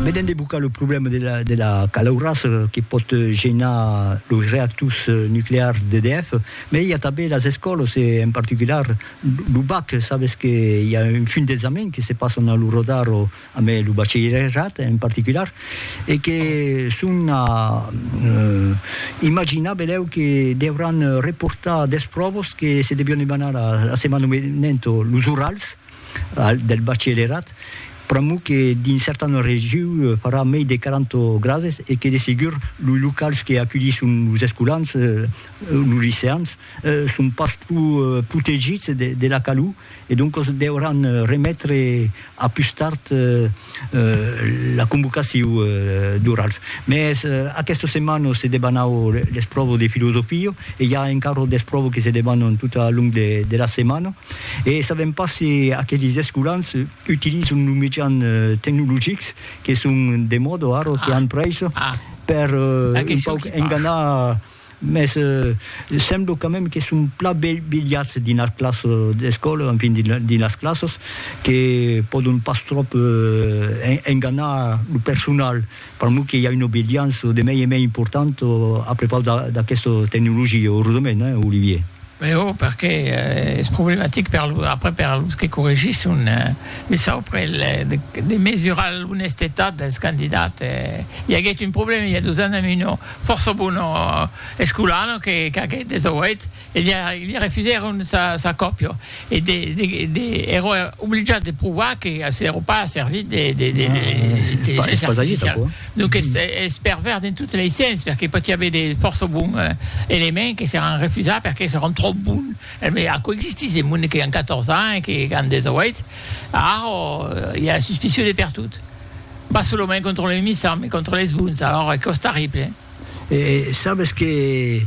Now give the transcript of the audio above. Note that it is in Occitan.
Vedent de bocar lo problèma de la calaurassa que pòt genar los reactors nuclears d'EDF, mai i a tanben las escòlas e en particular lo bac, sabes que i a un fum d'examen que se passan a lo radar amb lo bachelierat en particular e que son a imaginar belèu que deuràn reportar d'espròvas que se devián demanar la setmana venenta, los orals. del bachelerat, pr'amor que dins certanas regions farà mei de 40 grades e que de segur los locals que aculhisson los escolans, los liceans, son pas pro protegits de la calor e doncas deuràn remetre a pus tard la convocacion d'orals. Mès aquesta setmana se debanau les provas de filosofia e i a encara d'espròvas que se debanan tot al long de la setmana. E sabèm pas se aquelis escolans utilizan los mejans tecnologics que son de mòda ara, que an prais, per un pauc enganar, mès sembla quand même que son plan bilhats dins las classas d'escòla, enfin dins las classas, que pòdon pas tròp enganar lo personal. Per mo que i a una obediença de mei en mei importanta a prepaus d'aquesta tecnologia, auredament, eh, Olivier? Mès o perqué es problematic per lo, après per los que corregisson, mès saupre de mesurar l'onestetat dels candidats, i aguèt un problèma i a dos ans damb una fòrça bona escolana que qu'aguèt 18. e li refusèron sa còpia, e èrò obligat de provar que s'èrò pas servit de l'intelligéncia artificiala. Donques es pervèrs dins totes lei sens, perque pòti aver de fòrça bon elements que seràn refusats perque seròn tròp bon. Mès aquò existís en monde que an 14 ans e que an 18, arrò i a la suspicion de pertot, pas solament contra lei missants, mès contra leis bons, alòra aquò es terrible. E sabes que